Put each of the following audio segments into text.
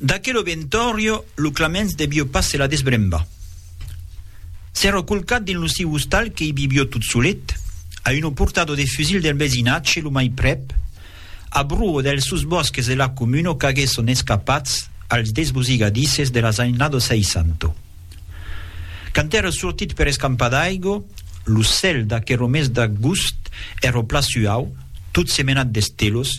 D'aquelo ventòrio lo Claments devió pas se la desbrembar. S'èra colcat dins lo siu ostal que i vivió tot solet, a una portada de fusil del vesinatge lo mai prèp, a bruo dels susbòsques de la comuna qu'aguèsson escapats als desbosigadisses de las annadas 60. Quand èra sortit per escampar d'aigo, lo cèl d'aquero mes d'agust èra pla suau, tot semenat d'estelos,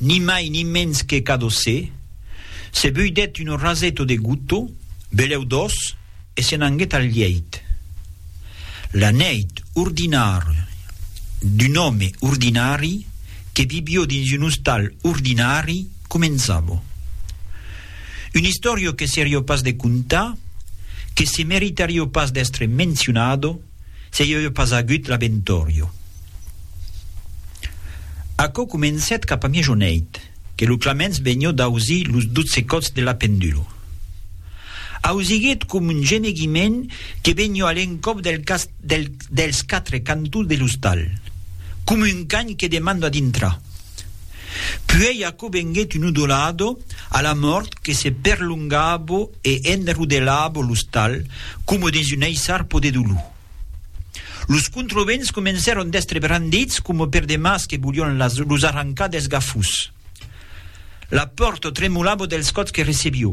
ni mai ni mens que Cadossé, se buidèt un raseto de gotto, belèu doç, e se n'anguèt al lièit. La nèit ordinària d'un òme ordinari que vivió dins un ostal ordinari començava. Una istòria que serió pas de contar, que se meritarió pas d'èstre mencionada, se i auie pas agut l'Abentorio. Aquò comencèt cap a miejoneit, que lo Claments vegnió d'ausir los dotze còts de la pendulo. Ausiguèt com un gemeguiment que vegnió a l'encòp dels quatre cantons de l'ostal, com un can que demanda dintrar. Puèi aquò venguèt un udolado a la mòrt que se perlongabo e enrodelabo l'ostal coma dins un eissarpo de dolor. Los controvents comencèron d'èstre brandits coma per de mas que volián los arrancar dels gafós. La pòrta tremolabo dels còps que recebió.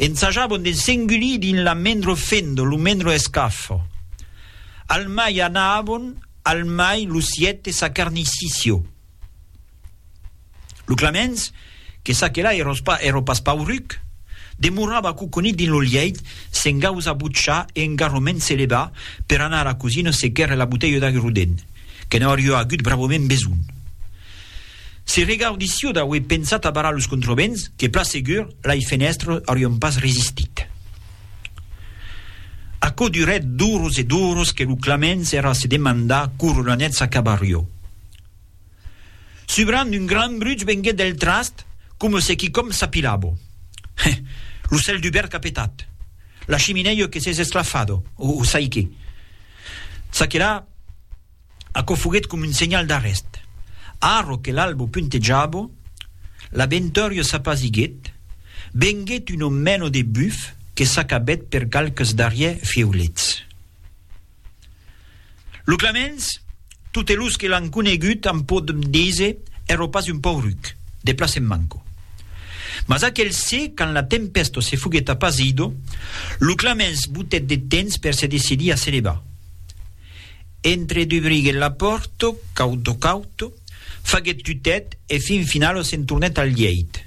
Ensajabon de s'engulir dins la mendro fendo, lo mendro escafo. Al mai anabon, al mai lo siète sa carnissicio. Lo Clamens, que ça que là eros pas, ero pas pauruc, demorava coconit dins lo lièit, se'n gausa butchar e engarroment se leva per anar a la cosina se quèrre la botelha d'agruden, que n'aurió agut bravament besonh. Se regaudi s'iu d'aué pensat a barrar los controvents, que plan segur, lai fenèstres aurion pas resistit. Aquò durèt d'oros e d'oros que lo Claments èra a se demandar coro la net s'acabarió. Subrant un gran bruch vengué del trast, coma se quicòm s'apilabo. Heh! Lo cèl dubèrt qu'a petat! La chiminèio que s'es esclafado! O sai qué! Ça que la! Aquò foguèt com un senhal d'arrèst. Arro que l'albo puntejabo, l'aventòrio s'apasiguèt, venguèt un omèno de buf que s'acabèt per qualques darrièr fièulets. Lo Clamens, totes los que l'an conegut an pòt díser, èro pas un pauruc, de plas en manco. Mas aquel se, quand la tempèsto se foguèt apasido, lo Clamens botèt de temps per se decidir a se levar. Entre dubriguèt la pòrto, cauto cauto, faguèt tutèt e fin finalo se'n tornèt al lièit.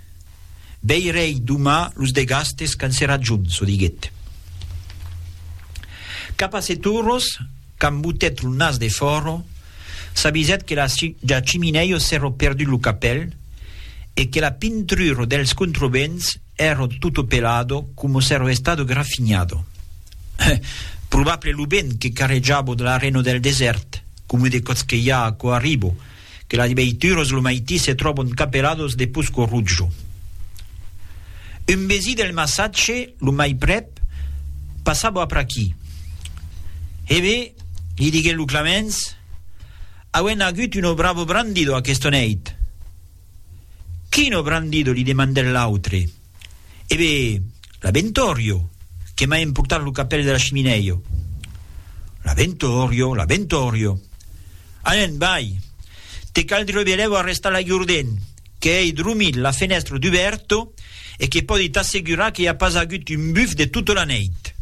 Veirèi doma los de Gastes qu'an se rajon, çò diguèt. Cap a Seturros, qu'embotèt lo nas de fòro, s'avisèt que la ja chiminèio s'èro perdut lo capèl e que la pintruro dels controvents ero tutto pelado como s'ero estado grafignado. Heh! Probable lo vent que carrejabo de l'arreno del desèrt, como de còth que i a aquò arribo, que las veituras lo maití se tròbon capelados de posco rutjo. Un vesí del massatge, lo mai prèp, passabo apr'aquí. Hebe, li diguèt lo Clamens, auem agut un obravo brandido aquesta nèit. Quin ò brandido? li demandèt l'autre. E be, l'Abentorio, que m'a emportat lo capèl de la chiminèio. L'Abentorio, l'Abentorio. Anen, vai! Te caldrió belèu arrestar l'Agjorden, que ei dromit, la fenèstra dubèrto e que pòdi t'assegurar que i a pas agut un buf de tota la nèit.